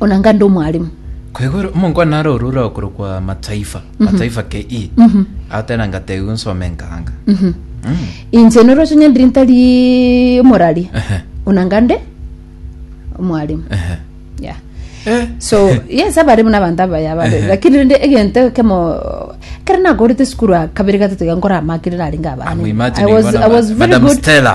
onanga nde omwaremu Kwegora omonko naro orure okorokwa mataifa mataifa ke i atena ngategu nsome nkanga Mhm. Mm. inche noroche onye ndiri ntari omorari Ehe. onanga nde omwaremu Ehe. yeah Eh. so yes abare buna abanto abaya abare Ehe. lakini rende egento kemo kare nakorete sukuru kabere gatato iga nkora amakire narenge abana Amu imagine I was, ibona I was ba- very Madam good Stella.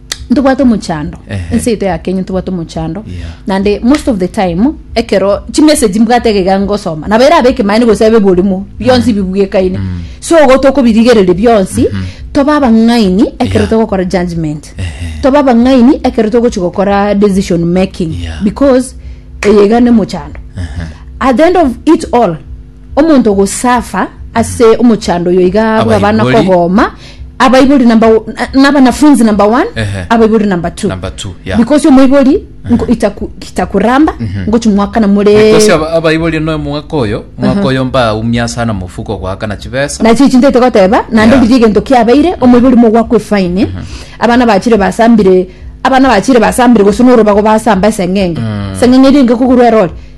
ntobwate omochando Ehe. ense yaito ya kenya ntobwate omochando Yeah. nande most of the time ekero chimessage mbwate egega ngosoma nabo erabe ekemaene gose abe eborimo bionsi bibwekaine so ogo tokobirigereria bionsi toba abang'aini ekero Yeah. togokora judgment Ehe. toba abang'aini ekero togochi gokora decision making Yeah. because eyega nemochando Ehe. at the end of it all Omonto ogosafa ase omochando oyo iga bwaba na Abaibori. kogoma abaibori number o- na- nabanafunzi number one Ehe. abaibori number two Number two, yeah. because omoibori nko- itaku- itakuramba ngochi mwakana more Because aba- abaibori noe mwaka oyo mwaka oyo mbaumia sana mofuko goakana chibesa nachi echi ntaite goteba nande Yeah. riria egento kiabeire omoibori mogwakwa efaini abana bachire basambire abana bachire basambire gose norobago basamba eseng'enge eseng'enge eri engekogorwa erore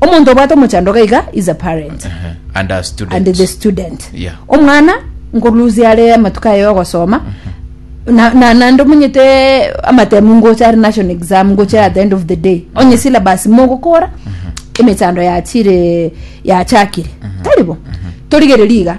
Omonto obwate omochando iga iga is a parent Ehe. and a student and the student Yeah. omwana nkolusia are amatuko aye ogosoma na- na- naende omonyete amatemu ngocha are national exam ngocha at the end of the day onye syllabus mogokora emechando yachire yachakire taribo torigereria iga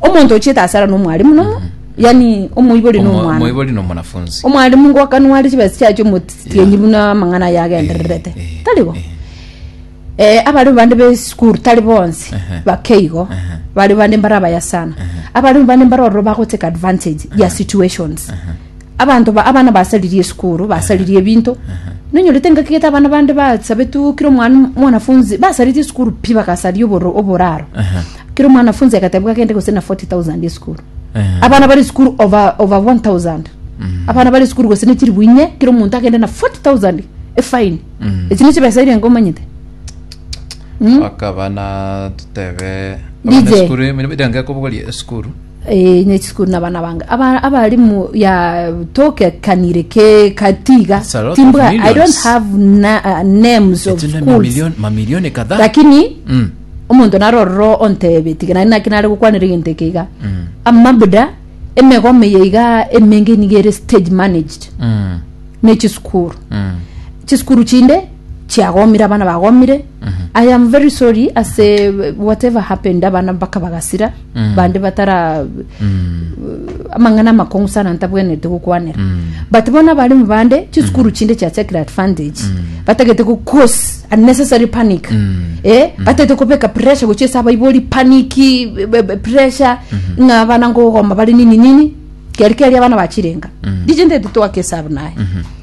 omonto ochiete ase ara nomwarimu nomo yani omoibori Omo- nomwana omoibori na omwanafunzi omwarimu ngokanware chibesa chiacho omotienyi Yeah. buna amang'ana aye agendererete Eh, eh, tarigo eh. Eh, abare bande besukuru tari bonsi Ehe. bakeigo Ehe. bare bande mbare abaya sana abare bande mbare ororo bagoteka advantage ya situations Abanto ba abana basaririe esukuru, basaririe ebinto. Nonyorete engaki gete abana bande basabetwe kira omwana mwanafunzi basaririe esukuru pi bagasaria oboro oboraro. Aha. Kira omwanafunzi agatebwa agende gose na 40,000 esukuru. Aha. Abana bari esukuru over over 1000. Abana bari esukuru gose ne chiribu inye kira omonto agende na 40,000 efine. Mm. Eki ne chibesa irenga omanyete. Mm. bakaba na totebe DJ. abana esukuru emirimo irenga kobogoria esukuru Ee, inye chisukuru na abana bange aba- abalimu ya tokekanire ke kati iga It's a lot of timbwa i don't millions. have na, uh, names of Etinde schools mamilioni mamilioni kadhaa lakini Mm. omonto narororo ontebe tiga nari naki nare gokwanera egento eke iga Mm. amabuda emegoma eye iga emenge niga ere stage managed Mm. ne chisukuru Mm. chisukuru chinde chiagomire abana bagomire i am very sorry ase whatever happened abana mpaka bagasira bande batara amang'ana amakong'u sana ntabwenerete gokwanera but bono abaremi bande chisukuru chinde chiachakire advantage batagete go cause unnecessary panic eh batagete kobeka pressure gochia ase abaibori panic be- be- be- pressure ng'a abana ngogomba bare nini nini keri keri abana bachirenga riche ntaete twake esabu naye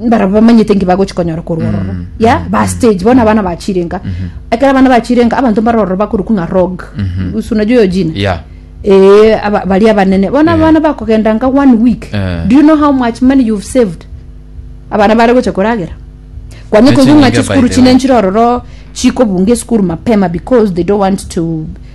mbarabwo bamanyete nki bagochi konyora korwa ororo mm, ya mm, ba mm. stage bona abana bachirenga mm-hmm. ekero abana bachirenga abanto mbare ororo bakoruku ng'a rog mm-hmm. usunajo yo jina yeah ee eh, bari abanene bona eh. abana bakogenda nga one week eh. do you know how much money you've saved abana bare gocha koragera kwanye koigwa ng'a chisukuru chinenchire ororo chikobunga esukuru mapema because they don't want to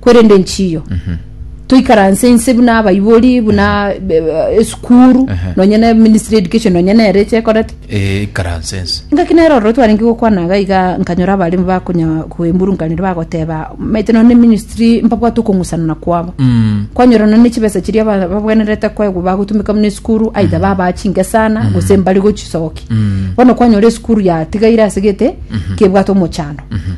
Korende nchiyo toikaranse inse buna abaibori buna be- be- esukuru Ehe. nonye ne ministry education nonye nere eche ekorete Eh, ikaranse ense ngaki nere ororo twarenge gokwana iga iga nkanyora abarimo bakonya koemurunkanire bagoteba maete nonye ne ministry mpabwate okong'usanana kwabo Mm. kwanyora nonye chibesa chiria ba- babwenerete kwegwa bagotumeka buna esukuru aitha babaa chingesana gose mbare gochisoki bono kwanyora esukuru yatigaire asegete kebwate omochando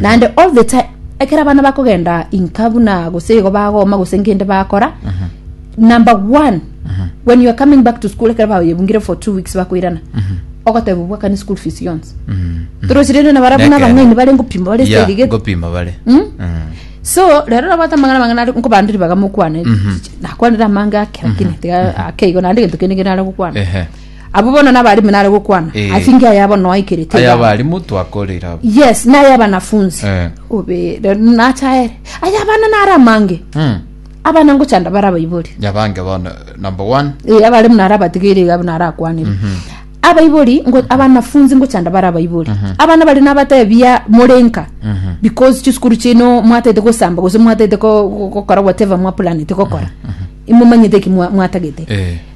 naende all the time ekero abana bakogenda inka buna gose igo bagoma gose nkende bakora number one when you are coming back to school ekero baoyebungire for two weeks bakoirana ogoteba obwakane school fees yonsi torosirende na barabu na Nekero. abang'aini bare ngopima bare ya segegete ngopima bare Mm? Mm. so rero nabwate amang'ana amang'ana ari nkobandiri baga mokwane nakwanire amange ake lakini tiga ake igo naende egento kende kerare gokwana ehe Abwo bono n'abalimu nare gokwana Eh. ase engiya yabo noaikerete Aya iganga. abalimu twakoreire abo. yes naye abanafunzi Eh. obe re- nachaere aya abana nare amange Mm. abana ngochanda bara abaibori Yabange bono number one. Eh, abalimu nare abatigeire iga nare akwanire abaibori ngo- abanafunzi ngochanda bara abaibori abana bari nabatebia morenka because chisukuru chino mwataete gosamba gose mwataete ko- ko- gokora whatever mwaplanete gokora imomanyete eki mwa- mwatagete Eh.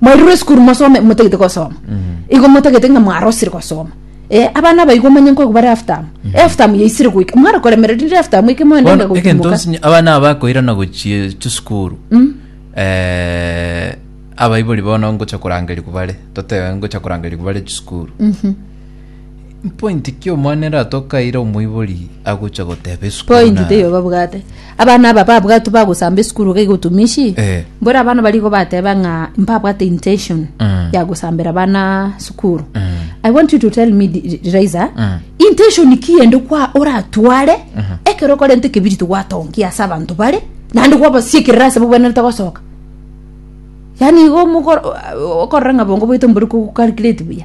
Mwairure esukuru mosome motagete gosoma. Igo motagete ng'a mwarosire gosoma. Eh, abana abaigwa omanye nkoigwa bare half term. Half term yaisire goika. Mware koremera rinde half term eke moende Bono, ng'a egento gotumoka. nsinye abana aba bakoirana gochia chisukuru eh, abaibori bono ngocha korangerigwa bare totebe ngocha korangerigwa bare chisukuru Mpointi ki omwana ere atokaire omoibori agocha goteba esukuru Point na- teiyo babwate abana aba babwatwe bagosamba esukuru iga igotumishi Eh. mbwera abana barigo bateba ng'a mbabwate intention Mm. ya gosambera abana sukuru i want you to tell me Di- Di- Diriza, Mm. intention ki ende kwa oratware ekero okorente ekebiriti gwatongia ase abanto bare naende gwabasiekerera ase bobwenerete gosoka yaani igo omokor- okorora ng'a bongo boito mbori kogokalculate buya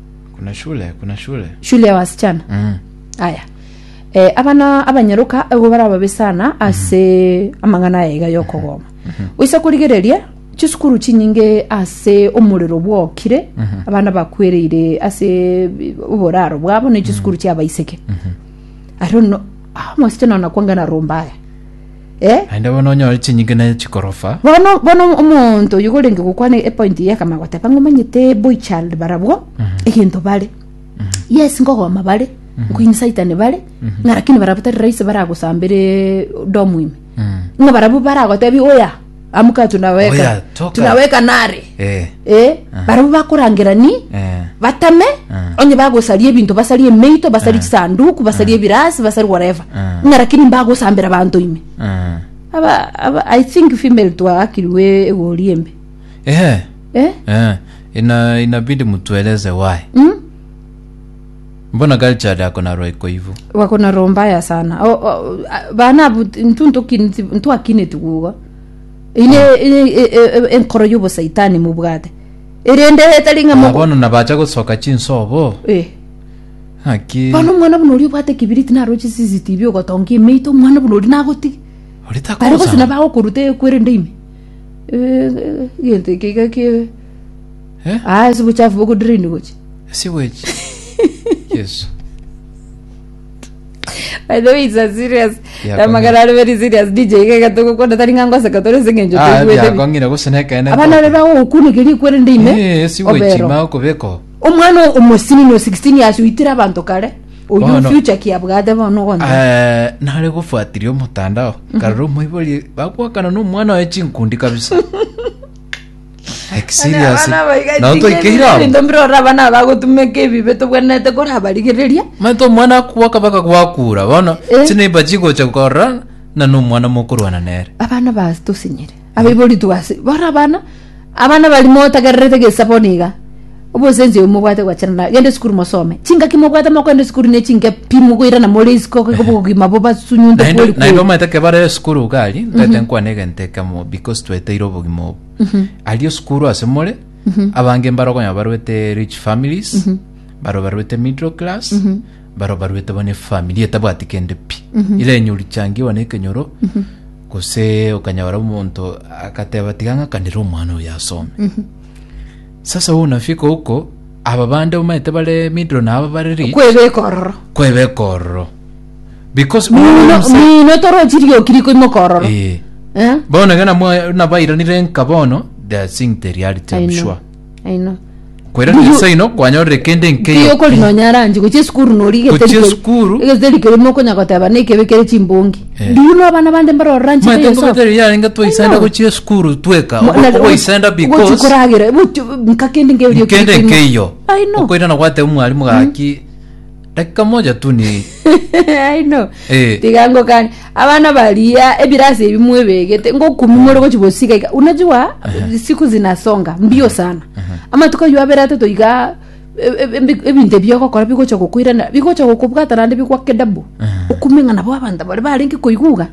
Kuna shule, kuna shule. shule ya wasichana Mm. aya eh, abana abanyaroka igo barababe sana ase amang'ana aya iga yokogoma oise korigereria chisukuru chinyinge ase omorero bwokire abana bakwereire ase oboraro bwabo ne chisukuru chiabaiseke arono omosichana ona kwangana romba aya Eh? Naende bono onyore chinyinga na chikorofa. bono bono omonto oyo gorenge gokwana epoint eye akama goteba ng'a omanyete boy child barabwo egento bare yes ngogoma bare nkoini saitani bare ng'a lakini barabwo tari rahisi baragosambere domu ime Mm. ng'a barabwo baragotebi oya amuka tunaweka Oya, toka. tunaweka nare Eh. eh barabwo bakorangera ni Eh. batame Eh. onye bagosaria ebinto basarie emeito basarie chisanduku basarie ebirasi basarie whatever Eh. ng'a lakini mbagosambera abanto ime Eh. aba, aba i think female twagakiriwe egori embe Eh. eh Eh. Ina inabidi mtueleze why. mm? Mbona Galjada akonarwa ikoivu. Bakonarwa mbaya sana. O, o, a- bana abu ntu ntukiniti ntwakineti gugo. Ine ine- e- e- e- enkoro y'obosaitani mubwate. Erende etari ng'a Ah, moko. bono nabacha gosoka chinsobo. Eh. Naki. Bono omwana buna oria obwate ekibiriti naroche CCTV ogotongia emeito omwana buna oria nagotiga. Ori Bare gose takosa. nabagokoruta ekwerende ime. egento eke iga ki Eh? ah ase obochafu bokodrain gochi Sewage. Yesu. by the way it's a serious Yeah, na magana are very serious dj iga iga togokona tari ng'a ngoseka tore ase eng'encho Ah, toigwete bi- biakong'ina gose nekene abana are ntoke. bagokunekeria ekwerende ime Eh, sewage obero ma okobeko. omwana omosini no 16 years oitire abanto kare Oyio Bono- future ki abwate bono ogoncha. Eh, nare gofuatiria omotandao karora omoibori bakwakana na omwana oye chinkundi kabisa like serious nao toikeire abo Ebinto mbire ora abana aba bagotumeka ebibe tobwenerete kore abarigereria. maete omwana akwaka baka gwakura bono Eh. chineiba chigocha korora na nomwana mokorwana nere Abana ba tosinyire. abaibori twase bore abana abana bari motagererete gesa bono iga obosensi oyo mobwate gwachana na gende esukuru mosome chingaki mobwate mokogenda esukuru ne chinke pi mogoirana more isiko iga obogima bobasunyunte naende kweri naende kweri omanyete ekero bare esukuru iga aria ntagete nkwane egento ekemo because tweteire obogima obo aria esukuru ase more abange mbare okonyora barwete rich families barwe barwete middle class barwe barwete bono efamiri etabwati kende pi ere enyori changiwa na ekenyoro Gose okanyora omonto agateba, Tiga ng'akanere omwana oyo asome. Sasa obonabii koko, aba bande omanyete bare middle na aba bare rich, kwebeka ororo kwebeka ororo. Because mino mino torochi rioki rikoimoka ororo Eh. Eh? bono iga namwa- nabairanire nka bono they are seeing the reality I'm I know. sure Aino. Kwera Mbuyu- Nyasae ino kwanyorire kende Mbuya nkeyo. okori nonya aranche gochia esukuru nori Gochia egeteri keria- esukuru. egeteri keria mokonya goteba na ekebe kere chimbongi Eh. mbuyu no abana bande mbarora nche Mwete beyosa. ngobeterio yarenge twaisenda Aino. gochia esukuru tweka. Mo- na- Ogoisenda gochi because koragera, bochi- nka kende nkeyo ri- kende ri- ri- nkeiyo. Aino. Okoirana gwateba mwarimu gaki dakika moja tu ni I know. Eh. tiga ngokani abana baria ebirasi ebi mwebegete ngokumi more gochi bosika iga unajua siku zinasonga mbio sana amatuko ayo abere atato iga e- e- ebi- ebinto ebi ogokora bigocha gokoirana bigocha gokobwata naende bigwake dabu okume ng'a nabo abanto bare barenge koiguga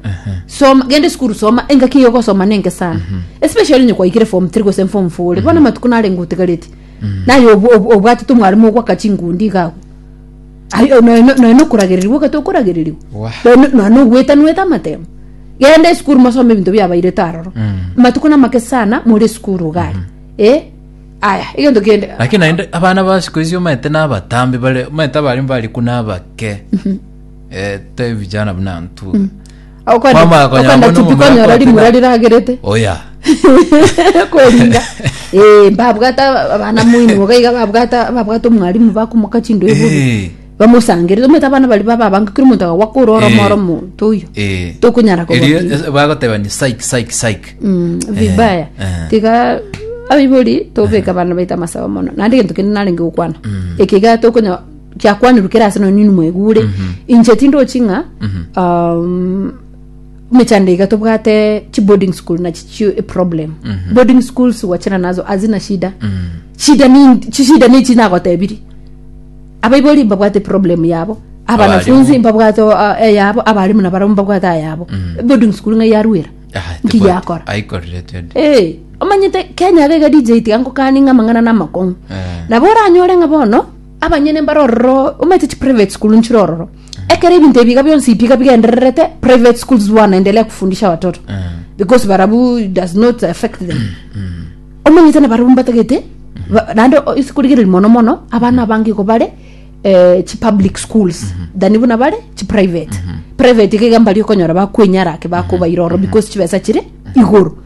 soma genda esukuru soma engaki eyo ogosoma nenge sana especially onye kwaikire form three gose form four ore bono amatuko narenge otigareti naye obw- obw- obwatete omwaremo ogwaka chingundi iga agwo Aye- o- noe- noe nokoragererigwa ogete okoragererigwa Wah. Noe no- noe nogwetanwete amatemo genda esukuru mosome ebinto biabairete aroro amatuko namake sana more esukuru iga aria Eh, aya egento kende lakini naende abana ba siku hizi omanyete nabatambi bare omanyete abare mbariku nabake Eh, te vijana buna ntube Okwenda- Kwamanya konyora okwenda bono tipi omomura konyora kwete rimura na- riragerete oya kweringa Eh, babwata abana moino boga iga babwata babwata omwalimu bakomoka chindo iburu Eh, bamosangerere omanyete abana bari bababange kera omonto agagwa kore oromo Eh. oromo toyo eh. Tokonyara koba Erio bibi. es- bagotebani saik saik saik Mm, vibaya eh. tiga abibori tobeka abana baito amasabo mono naende egento kende narenge gokwana ekiga tokonya chiakwanirwe kera ase nonye nimwegure inche tindochi ng'a um, mechando iga tobwate chi boarding school nachi chi a problem boarding schools wachana nazo azina shida shida ni chishida nichi nagotebiri abaibori mbabwate problem yabo abanafunzi mbabwate uh, eyabo abarimu nabaro mbabwate ayabo boarding school ng'a yaruera nki yakora aikorire twende Eh, omanyete kenya gaiga dj tiga ngokani ng'a amang'ana na amakong'u Eh. nabo oranyore ng'a bono abanyene mbare ororo omanyete chi private school nchire ororo ekero ebinto ebiga bionsi biga bigendererete private schools wanaendelea kufundisha watoto because barabu does not affect them omanyete na barabu mbatagete ba- naende o- ase korigereria mono mono abana abange igo bare eh, chi public schools than buna bare chi private private iga iga mbari okonyora bakwenyara ake bakobaira ororo because chibesa chire igoro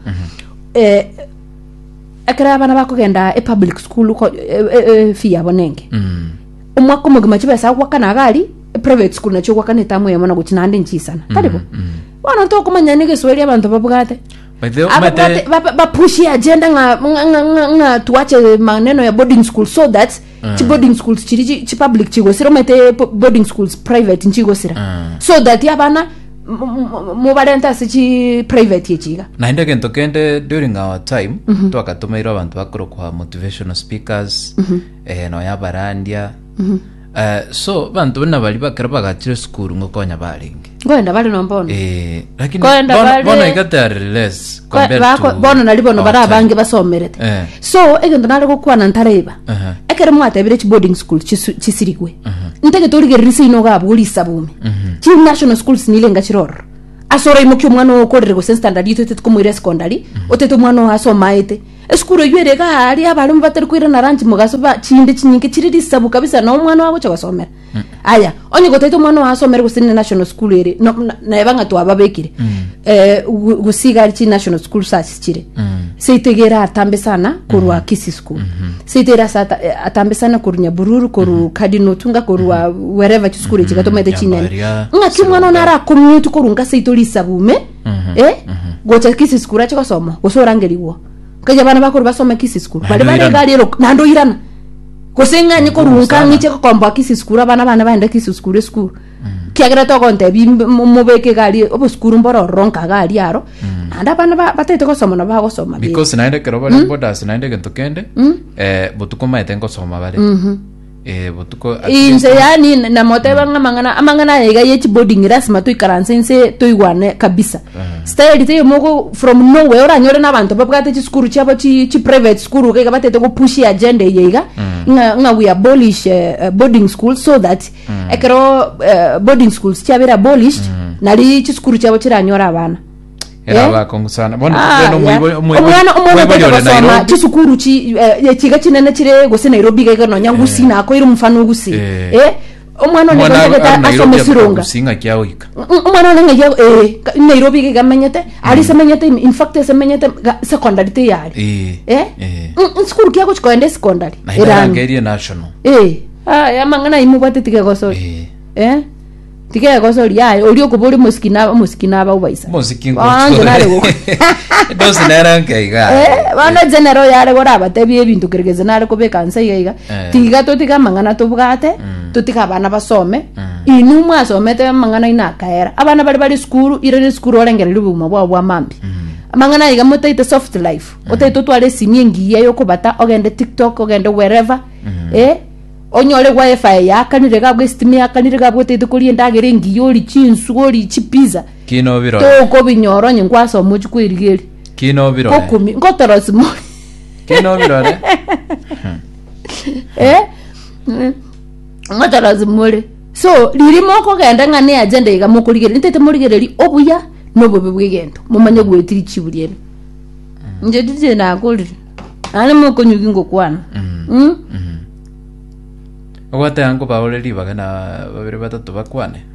Eh, ekero abana bakogenda epublic school ko- e- e- e- fee yabo nenge Mm. omwaka omogima chibesa agwakana agari private school nacho ogwakana etamu eyemo na gochi naende nchisana tarigo bono tokomanya negesweri abanto babwate By the way, Ababwate- omate- ba- ba- bapushi agenda ng'a- ng'a- ng'a- ng'a- ng'a tuache maneno ya boarding school so that chi boarding schools chiri chi- chi public chigosira omanyete po- boarding schools private nchigosira Mm. so that abana m- m- mobarente ase chi private echi iga naende egento kende during our time twakatomeirwe abanto bakorokwa motivational speakers eh, nonya abarandia Eh, so banto buna bari bakero bagachire sukuru ngokonya barenge ngoenda bare no bono Eh, lakini Koenda bono- bare- bono iga they are less Ko- compared bako- to bono nari bono our bari time. abange basomerete Eh. so egento nare gokwana ntareba Aha. ekero mwatebire chi boarding school chisu- chisirigwe ntagete origereri seino ogabwa ori isabumi chi national schools nile ngachiroro ase oraimokia omwana oo okorire gose standard ito otete komoira secondary otete omwana oo asomaete esukuru eywo ere gaari abarimu batari koira na ranchi mogaso ba chinde chinyinke chiri risabu kabisa na omwana wagocha gosomera aya onye gotaete omwana oyo asomere gose ne national school ere no- na- naeba ng'a twababekire eh, go- gosiga chi national school sasi chire seitegere atambe sana korwa kisi school seitegere ase ata- eh, atambe sana korwa nyabururu korwa kadinotunga korwa wereva chisukuru echi gatomete chinene Nyambaria, ng'aki omwana one Sironga. arakomutu korwa nka seito risabume eh, gocha kisi school ache gosoma gose orangerigwa nkaja abana bakoro basome kisi school bari Naende oirana. barega riero naende oirana Gose ng'anye Mkuu korunka sana. ng'iche gokomboa kisi sukuru abana bane baende kisi sukuru esukuru kiagera togontebia imbe- mo- mobeke egari obosukuru mboro ororo nka gari aro naende abana ba- batete gosoma nabo bagosoma be- because naende ekero bare bodas naende egento kende eh, botuko maete nkosoma bare Eh, botuko at least- inse yani namoteba ng'a amang'ana amang'ana aya iga ye chiboding lasima toikaranse inse toigwane kabisa style teiyo mogo from nowhere oranyore n'abanto babwate chisukuru chiabo chi chi private school iga iga batete gopushi agenda eye iga ng'a ng'a we abolish eh, eh, boarding school so that ekero eh, boarding schools chiabere abolished nari chisukuru chiabo chiranyore abana era Yeah. abakongu sana bono Ah, bono yeah. omwibo- omwibo- omwana omwana omwibo otaete ore gosoma Nairobi. chisukuru chi eh, chiga chinene chire gose nairobi iga iga nonya ngusi nakoire omufano ogusi Eh. eh Omwana one Omwana abe- abe Nairobi asome ameka surunga. gusinga kia oika. Omwana one ng'ai ago- eh, ka- Nairobi iga igamenyete, ari semenyete in- in fact esemenyete ga- secondary teyari. Eh, Eh? eh. Mm, mm, Sukuru kia gochika koenda esecondary. Naende Erang'u. arangerie national. Eh, aya amang'ana ayi mobwate tiga egosori. Eh. Eh? Tiga egosori aye, ori okoba ori mosiki na mosiki na abaubaisa. Mosiki Ah, nje nare go- Dosi nere nkaiga. Eh, bono general yare gora abatebie ebinto keregeze nare kobeka nsa iga iga Eh. tiga totige amang'ana tobwate totige abana basome inwe mwasomete amang'ana ina akaera abana bare bari sukuru ire ne sukuru orengereria obogima bwao bwa mambi amang'ana aiga motaete soft life otaete otware esimi engiya yokobata ogende tiktok ogende wherever eh onyore wifi yakanire iga abwo estima yakanire iga abwo otaete koria endagera engiya ori chinsu ori chipizza Kino birora. tokobinyora onye nkwasoma ochi kwerigeria Kino birora. gokumi ngotorosi mori Ki nobirore? Eh? Mm. Ngochorosi more. So, riri mokogenda ng'a ne agenda iga mokorigereria, ntete morigereria obuya na obobe bw'egento. Momanye gwetiri chiburi ere. Inche tije nakorire. Nare mokonyugi ngokwana. Mm. ogoteba nkobaure ribaga na babere batato bakwane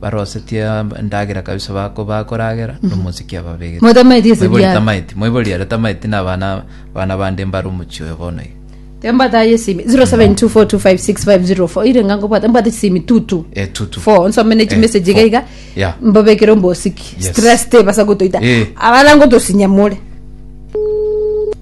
Barosetie endagera kabisa bako bakoragera nomosike ababegete. Motameti ase Moibori biara. tameti, moibori are tameti na abana abana bande mbare omochie oyo bono iga. Tembataye esimi 0724256504 irenga nkobwata mbwate chisimi tutu Eh, tutu. four nsome ne Eh, chimessage iga four. iga Yeah. mbabekere ombosiki Yes. stress tebasa gotoita Eh. abana ngotosinyamore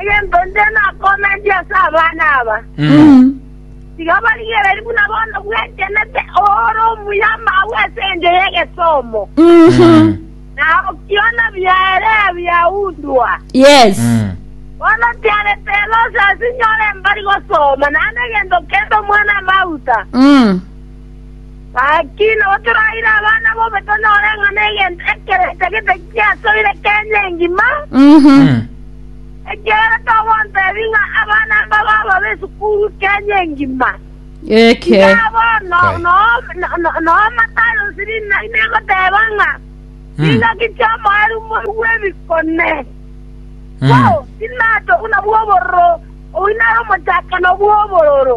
Egento nde nakomentie ase abana aba, tiga barigererie buna bono bwegenete oore omuya amagwe ase engencho y'egesomo, na okiona biaere biaundwa. Yes. Bono tiarete elosi ase inyore mbari gosoma, naende egento kende omwana amauta. Mm. Gaki nabo toraire abana bobe tonyore ng'a negento ekero etagete giasoire Kenya engima, ekiagera togontebi ng'a abana aba bababe esukuru Kenya engima. Eke. Iga bono Kai. no- no- no- noo Matayo siri na ine egoteba ng'a ring'aki chi'omoeru moigwe ebikone. Bo, tinatogu nabwo obororo, oinare omochakano bw'obororo.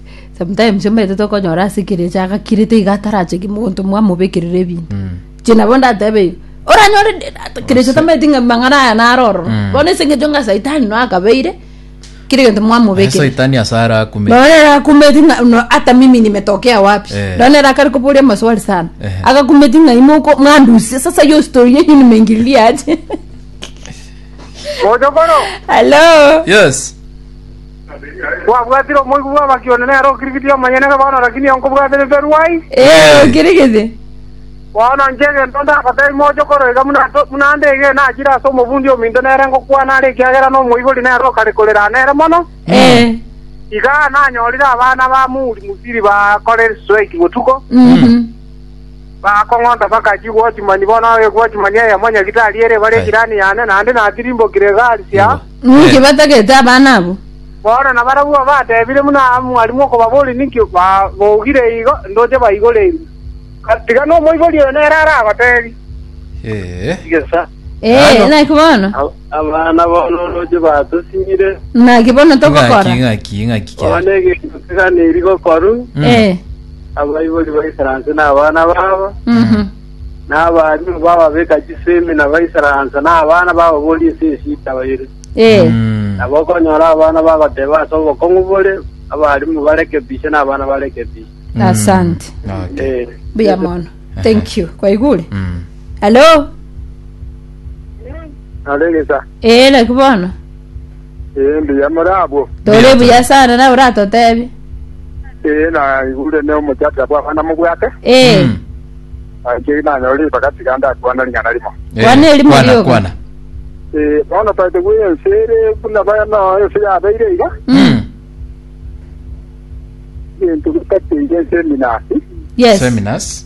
sometimes omanyete tokonyora ase ekerecha agakirete iga ataracheki monto mwamobekerera ebinto inche nabo ndatebe igo oranyore de- ata- kerecha tamanyeti ng'a mang'ana aya naro ororo Mm. bono ase eng'encho ng'a saitani no akabeire kera egento mwamobekerera saitani ase arakume nonya nere akumeti ng'a no hata mimi nimetokea wapi Eh. nonya nere akare koboria amaswali sana Ehe. agakumeti ng'a imo oko- mwandusia sasa hiyo story yenyu nimeingililia aje Mochokoro, hello yes Kwabwatire omoibi bw'amaki one nere okirigitie omonyene ng'a bono rakini igo nkobwatire mberwa ai. Ee, okirigitie. Bono inche egento ndabatebi moche korwa iga buna ato- buna ande ege nachire ase omobundi ominto nere ngokwana are ekiagera nomoibori nere okare korera nere mono. Ee. Iga nanyorire abana ba Muri Musiri bakorire strike botuko, Mhm. bakong'onta mpaka chigwochimani bono egwochimani eyemo nyagitari ere bare Kai. ejirani yane naende natirimbokire egari sia Nigo. Ninki batagete abana abwo? Bono nabarabwo abatebire buna mwarimu okobaboria, Ninki babogire igo? Ndoche baigorerie. Tiga nomoibori oyo nere aragotebie. Ee. Tigesa. Ee, Ano. naki bono? Abana bono ndoche batosinyire. Naki bono Ng'aki, togokora? ng'aki, ng'aki kera. Bono egento keganeri gokorwa, Mm. Ee. abaibori baisaranse nabana babo, Mhm. na abaalimu b'ababeka chisemi na baisaraansa, na abana bababoria ense ye chitaba ere. Ee. Nabo okonyora abana bagoteba ase obokong'u bore, Abaalimu barekebishe, na abana barekebishe. Asante. Okay. Ee. Buya mono. Thank you. Kwaigure? Mm. Hello? Naregesa. Ee, laki bono. Ee, mbuya more abwo. Tore buya sana nawe oratotebi. Ee, naigure ne omochakera bw'abana mobwate. Ee. Mm. Nainche nanyore ribaga tiga ndakwane ring'ana rimo. Eh, Kwana erimo kwana, rioka. kwana. Ee, bono taete bwe ense ere buna baya no ense yabeire iga. Mm. Gento getateire ense eminasi. Yes. Seminars.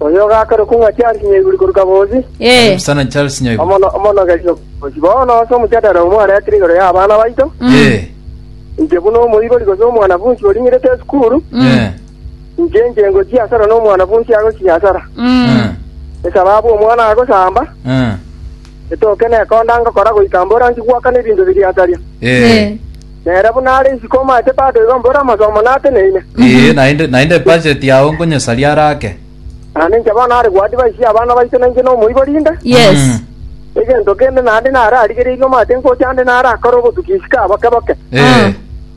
Oyo ogakarokwa ng'a Charles Nyaiburi korwa Kabozi, Karibu sana Charles Nyaiguru. omono- omonogeri o Kabozi. Bono ase omojadara oyo mwaretire igoro y'abana baito, Eh, inche buna omoibori gose omwanafunsi oring'irete esukuru, eh, inche inche ngochia asara na omwanafunsi agochia asara. eh, Esababu omwana agosamba, eh. Etoke nekonda ngokora goika mborangi gwaka nebinto biria ataria. Ee. Nere buna are isiko omaete bado igo mbore amasomo nateneine. Ee, naende, naende ebudget yao nkonyesaria are ake. Naende inche bono are goadvise y'abana baito na inche nomoibori inde. Yes. Mm. Egento kende naende nararigereirie omaete ngocha ande narakore obotuki isiko aboke boke. Ee.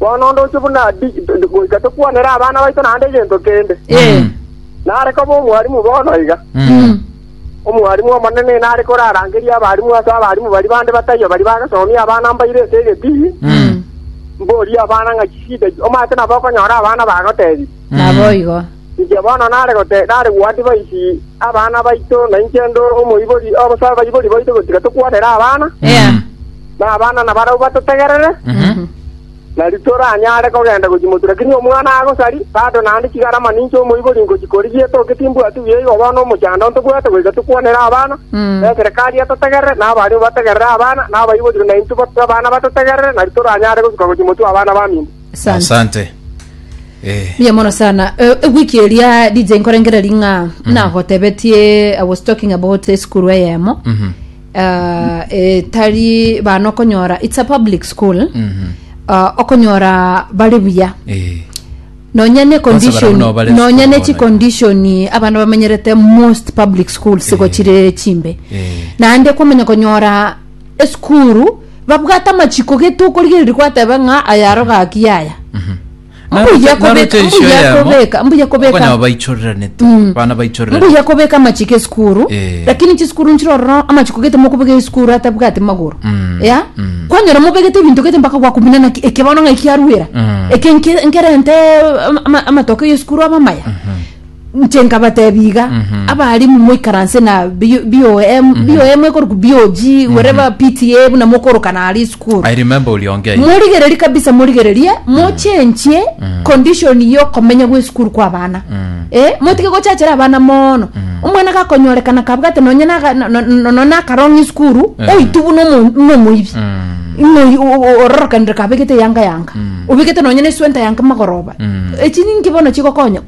Bono ndoche buna ndi, goika tokwanere abana baito naende egento kende. Eh. Nare koba omwarimu bono iga. Mm. Omwarimu omonene nare korarangerie abarimu ase abarimu baria bande bataiyo baria bagasomia abana mbaire ase egetii, Mm. mborie abana ng'a chisida ki omanyete nabo okonyora abana bagotebia. Naboigo. Inche bono nare gote nare goadvise abana baito, na inche ndo omoibori obosa abaibori baito gotiga tokwanera abana, Yeah. na abana nabarabwo batotegerere, nari toranyare kogenda gochimotu. Lakini omwana agosari, bado naende chigarama ninche omoibori ngochi korigia etoke timbwati buya igo bono omochando ntobwate goika tokwanera abana, Mm. eserekari etotegerere, na abaria bategerere abana, na abaibori na intwe ba- abana batotegerere, nari toranyare gosuka gochimotu abana baminto. Asante. Asante. Eh. Mbuya mono sana Eh, ewiki eria dj nkorengereri ng'a nagotebetie i was talking about esukuru eyemo Mhm. Ah, etari bana okonyora its a public school Mhm. Ah, okonyora bari buya Eh. nonya ne Kwanza condition barabona abare nonya sukuru ne chi bono. condition abana bamenyerete most public schools gochire chimbe Eh. naende kwamanya konyora esukuru babwate amachiko gete okorigereria gwateba ng'a aya aro gaki yaya mbuya kobeka mbuya kobeka mbuya kobeka okonyama baichoreranete Mm. bana baichorerane mbuya kobeka amachiko esukuru Eh. lakini chisukuru nchire ororo amachiko gete mokobeka esukuru atabwate magoro Mm. ya Mm. kwanyora mobegete ebinto gete mpaka gwakumina naki ekebano ng'a ekiaruera Mm. eke nke- nkerente ama- ama- amatoke ya esukuru aba amaya Inche nkabateebia iga, abaalimu moikaranse na B- BOM, BOM ekorokwa BOG, wherever PTA buna mokorokana aria esukuru. I remember uliongea hivi. morigererie kabisa morigererie mochenchie condition yokomenya gwesukuru kwa abana eh, motige gochachera abana mono omwana gakonyorekana kabwate nonye naga- no- no- no- no- nakarong'a esukuru Eh. oitu buna omo- buna omoibi Ng'a oyi- o- o- ororokanire kabegete yanga yanga obegete nonye na eswenta yanga magoroba echi ninki bono chigokonya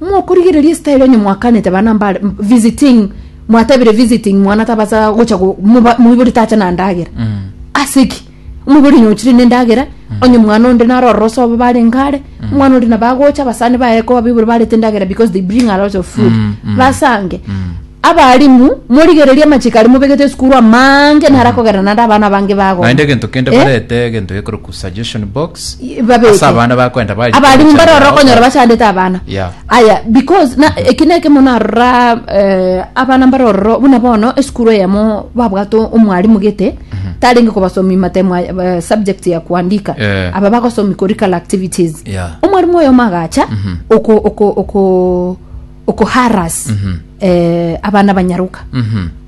Mokorigereria estyle onye mwakanete abana mbare visiting mwatebire visiting mwana tabasa gocha go- moba- moibori tacha na ndagera ase ki omoibori onye ochire ne ndagera onye mwana onde naro ororo sobo barenge are mwana onde nabo agocha abasani baye ko abaibori barete ndagera because they bring a lot of food basange Abaalimu, morigererie amachiko aria mobegete esukuru amange naro akogerana naende abana abange bagoma. Naende egento kende Eh? barete egento gekorokwa suggestion box Y- babeke. ase abana bakoenda bari abalimu komochando mbarora yao. okonyora bachandete abana Yeah. aya because na eki neke mono arora eh, abana mbarororo buna bono esukuru eyemo babwate omwalimu gete tarenge kobasomi matemwa eh, subject ya kuandika Eh. aba bagosomi curricular activities Yeah. omwalimu oyomo agacha oko oko oko okoharass eh, abana banyaroka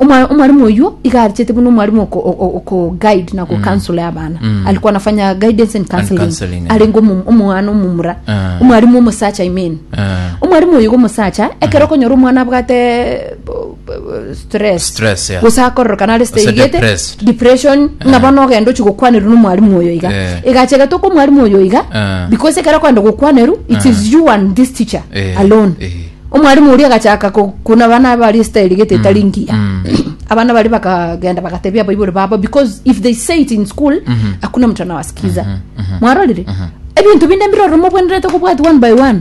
Omwa- omwalimu oyuo iga arichete buna omwalimu oko- o- o- oko guide na kukansole abana alikuwa anafanya guidance and counseling counseling, eh. arenge omu- omwana omumura Ah. omwalimu omosacha i mean Ah. omwalimu oyo iga omosacha ekero okonyora omwana abwate uh, stress Stress, yeah. gose akororoka nare Gose stayigete depressed. depression ng'a Eh. bono ogenda ochi gokwanerwa na omwarimu oyo iga Eh. egachegete okwa omwarimu oyo iga Eh. because ekero kwenda gokwanerwa it Eh. is you and this teacher Eh, alone eh. omwarimu oria agachaka ko- kuna bana bari stayigete etari ngiya mm. abana bari bakagenda bagatebia abaibori babo because if they say it in school Mhm. hakuna mtu anawasikiza mwarorire ebintu binde mbiroromo bwenerete kobwati one by one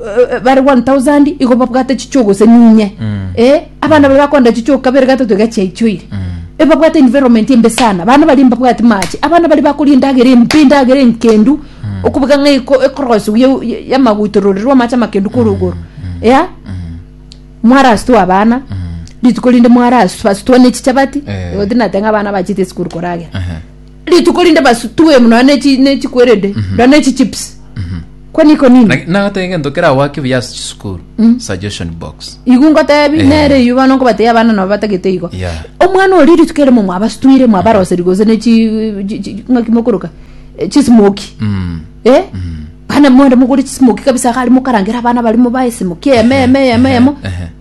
eh, bare 1000 igo babwate chichuo gose ninye eh, abana babe bakonda chichuo kabere gatato iga chiaichoire Eh, babwate environment embe sana bana bari mbabwati mache abana bari bakoria endagera embe endagera enkendu okubuga ng'a eko- ekorosu ye- ye- yamagutororerwa amache amakendu korogoro ya mwarasitwa abana rituko rinde mwarasitwa ne chichabati Eh. igo tinateng'a abana bachete esukuru koragera Ehe. rituko rinde basutue muna nechi nechi kwerede na nechi chips kwani iko nini Laki- nagoteba egento kera gwake buya ase chisukuru suggestion box igu ngotebi Eh. nere iyu bana nkobateya abana nabo batagete igo Yeah. omwana ori rituko erimo mwabasutwire mwabaroseri gose nechi chi- chi- ng'aki mokoroka Eh, chismoki Mm. eh bana mwende mokore chismoki kabisa gari mokarangera abana barimo baesimo kieme eme eme emo ehe.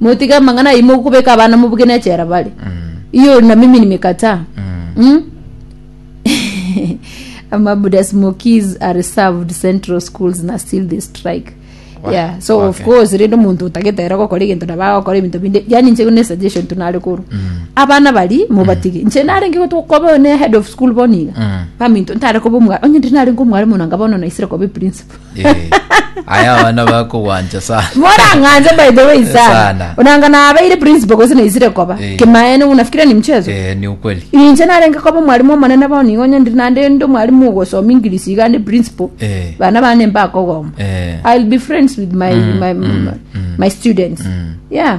motige amang'ana ayio mokobeka abana mobuge nechera bare hiyo na mimi nimekataa mm? amabuda smokies are served central schools na still they strike yeah so of okay. course rende omonto otagetera gokora egento nabo agokora ebinto binde yani inche ne suggestion tunare koru abana bari mobatige inche narenge gotu koba ne head of school bono iga baminto ntare koba omwa onye ndiri narenge omwarimu nanga bono naisire koba principal Eh, aya abana bakogwancha sana morang'anze by the way sana Sana. onanga nabeire principal gose naisire koba Eh. kimaene unafikire ni mchezo Eh, ni ukweli inche narenge koba omwalimu omonene bono igo onye ndiri nande ndi omwalimu ogosoma ingirisi iga ndi principal Eh. bana bane mbakogoma Eh. i'll be friends with my, my, my, my students yeah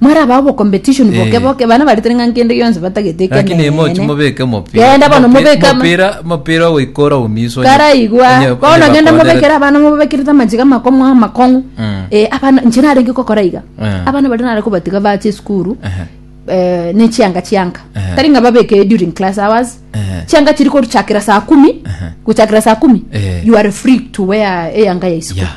Mwarabe abo competition Eh. boke boke bana baretire ng'a nkende gionsi batagete ekenene. lakini mochi mobeke omopira Genda bono Mopi- mobeke ama- mopira mopira ogoikora omiso onye- karaigwa onye- onye bono genda bakondere- mobekere abana mobabekerete amachiga amakomo amakong'u Mm. Eh, abana inche narenge kokora iga Eh. abana baria nare kobatiga bache esukuru Ehe. eh, ne chianga chianga Eh. tari ng'a babeke during class hours Eh. chianga chiri koruchakera saa kumi Ehe. gochakera saa kumi Eh. you are free to wear eyanga ya isuku Yeah.